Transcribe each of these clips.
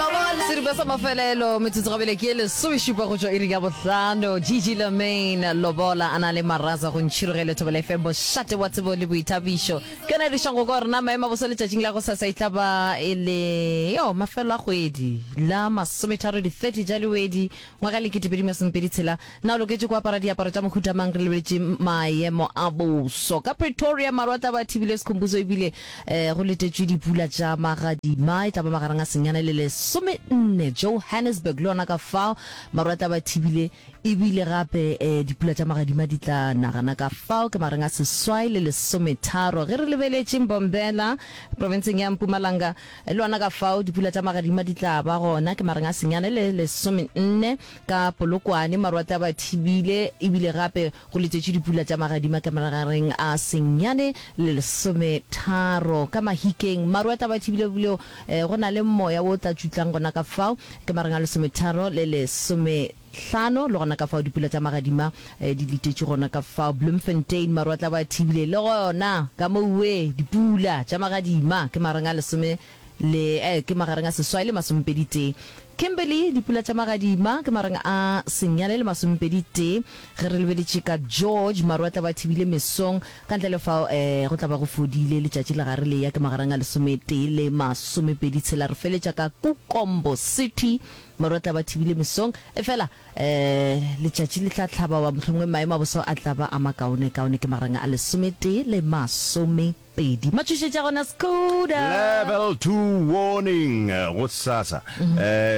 Sedupa sa mafelelo metsotso gabele ke e lesomešupa go tšwa iri ya bohlano gg lamain lobola a na le maraza go ntšhiroge lethobela fm bošate wa tsebo le boithabišo ke yona e dišang go ka rena maemo a bosa letšatšing la go sasa e tla ba e le yo mafelo a kgwedi la masometharo di-30 ja lewedi Ngwaga lekete pedi masomepedi tshela, Na o loketše go apara diaparo tša mohuta mang re lebeletše maemo a boso? Ka Pretoria maru a tla ba a thibile sekhumbuzo e bile um go letetšwe dipula tša magadima e tla ba magareng a senyane le lesomenne. Johannesburg le yona ka fao maru a tla ba thibile e bile gape um dipula tša magadima di tla na gana ka fao ke magareng a seswai le lesometharo. Ge re lebeletše Mbombela profenseng ya Mpumalanga, E le gona ka fao dipula tša magadima di tla ba gona ke mareng a senyane le lesomenne ka Polokwane. Maru a tla ba thibile e bile gape go letšetšwe dipula tša magadima ke magareng a senyane le lesometharo ka Mahikeng. Maru a tla ba thibile e bile go na le moya wo o tla tšutlang gona ka fao ke mareng a lesometharo le lesome. Hlano, le gona ka fao dipula tša magadima di letetše gona ka fao Bloemfontein, maru a tla bo a thibile le gona ka mo Uwe. Dipula tša magadima ke magareng a lesome le, ee, ke magareng a seswai le masomepedi tee. Kimberly, Dipula tša magadima ke magareng a senyane le masomepedi tee. Ge re lebeletše ka George, maru a tla bo a thibile mesong, ka ntle le fao, ee, go tla ba go fodile. Letšatši le gare le eya ke magareng a lesometee le masomepedi tshela. Re feletša ka Kukombo City. Maru a tla ba thibile mesong, efela letšatši le tla hlaba, goba mohlomongwe maemo a boso a tla ba a makaone kaone. Ke magareng a lesometee le masomepedi. Matšhošetši a gona Skoda! Level Two Warning go sasa.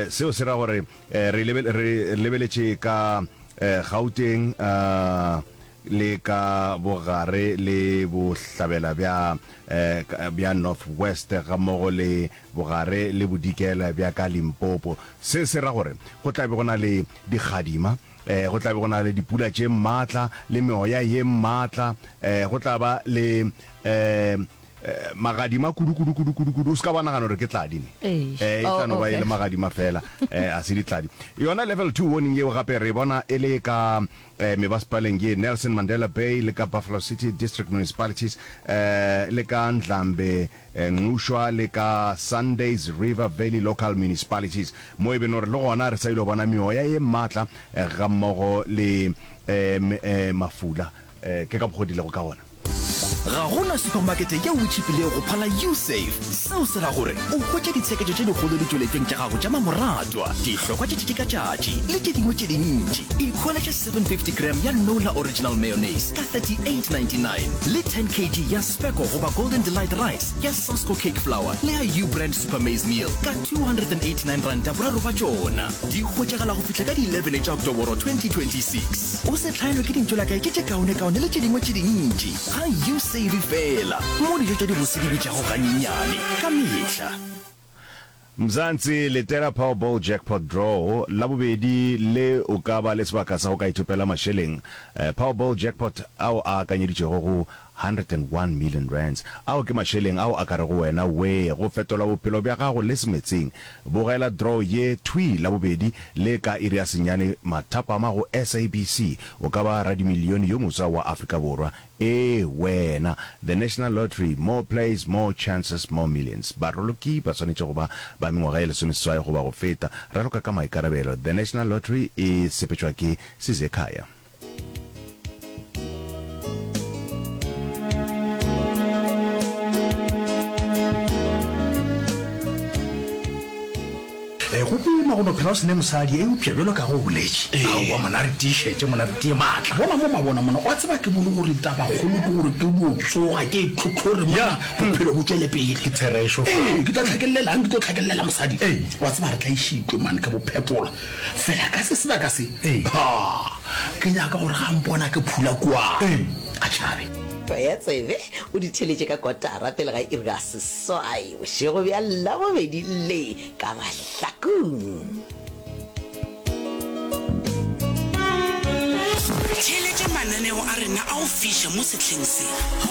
Seo se ra gore re lebeletše ka Gauteng le ka bogare le bohlabela bja North West gammogo le bogare le bodikela bja ka Limpopo. Se se ra gore go tla be go na le dikgadima, ee, go tla be go na le dipula tše matla le meoya ye matla, ee, go tla ba le, ee, ee, magadima kudu, kudu, kudu, kudu, kudu. O se ka ba nagana gore ke tladi ne. Eish. Ee, e Oh, tla no ba e okay. le magadima fela, ee, ga se ditladi. Yona level two warning yeo gape re bona e le ka ee, mebasepaleng ye Nelson Mandela Bay le ka Buffalo City District Municipalities, ee, le ka Ndlambe Nxwa le ka Sundays River Valley Local Municipalities, mo e beno re le gona re sa ile go bona meoya ye mmatla ga mmogo le mafula. Ke ka mokgwa o dilego ka gona. Ga go na supamakete yeo e tšhipilego go phala U-Save. Seo se ra gore o hwetša ditsheketšo tše dikgolo ditšweletšong tša gago tša mamoratwa, dihlokwa tša tšatši ka tšatši le tše dingwe tše dintši. Ikhwele 750 gram ya nola original mayonnaise ka 38.99 le 10 kg ya speko goba golden delight rice ya sasco cake flour le ya u brand super maize meal ka 289 ranta boraro ba tšona di hwetšagala go fihla ka di 11 tša oktoboro 2026 o se tlhaelwe ke dintšo la kae ke tše kaonekaone le tše dingwe tše dintši ga u save fela mo dijo tša dibose di bitšago ganyenyane ka mehla Mzansi, letela Powerball Jackpot Draw la bobedi le o ka ba le sebaka sa go ka ithopela mašeleng Powerball Jackpot ao a akanyeditšwego go R101 million. Ao ke mašeleng ao a ka rego wena wee go fetola bophelo bja gago le semetsing. Bogela draw ye thwii Labobedi le ka iri ya senyane mathapama go SABC. O ka ba radimilione yo moswa wa Afrika Borwa Ee, wena. The National Lottery, More plays, more chances, more millions. Baroloki ba swanetše go ba ba mengwaga e lesomeseswai goba go feta. Raloka ka maikarabelo, The National Lottery e sepetšwa ke Sizekhaya. E, go boima go no phela o sene mosadi, eupša bjalo ka ge o boletše. Aowa, mona re tiišetše, mona re tie maatla. Bona mo mabona mona, o a tseba ke bone gore tabakgolo ke gore ke no tsoga ke e tlhotlhore mona bophelo bo tšwele pele. Ke therešo. Ee, ke tla tlhakellelang, ke tlo tlhakellela mosadi. Ee. O a tseba re tla išitwe mane ke bophepola fela ka se sebaka se. Ee. Ha, ke nyaka gore ga mpona ke phula kua. Ee. A tšhabe. Tlwaetsebe o di theletše ka kotara pele ga iri ya seswai. Bošego bja Labobedi le ka mahlakong. Theeletša mananeo a rena a go fiša mo sehleng se.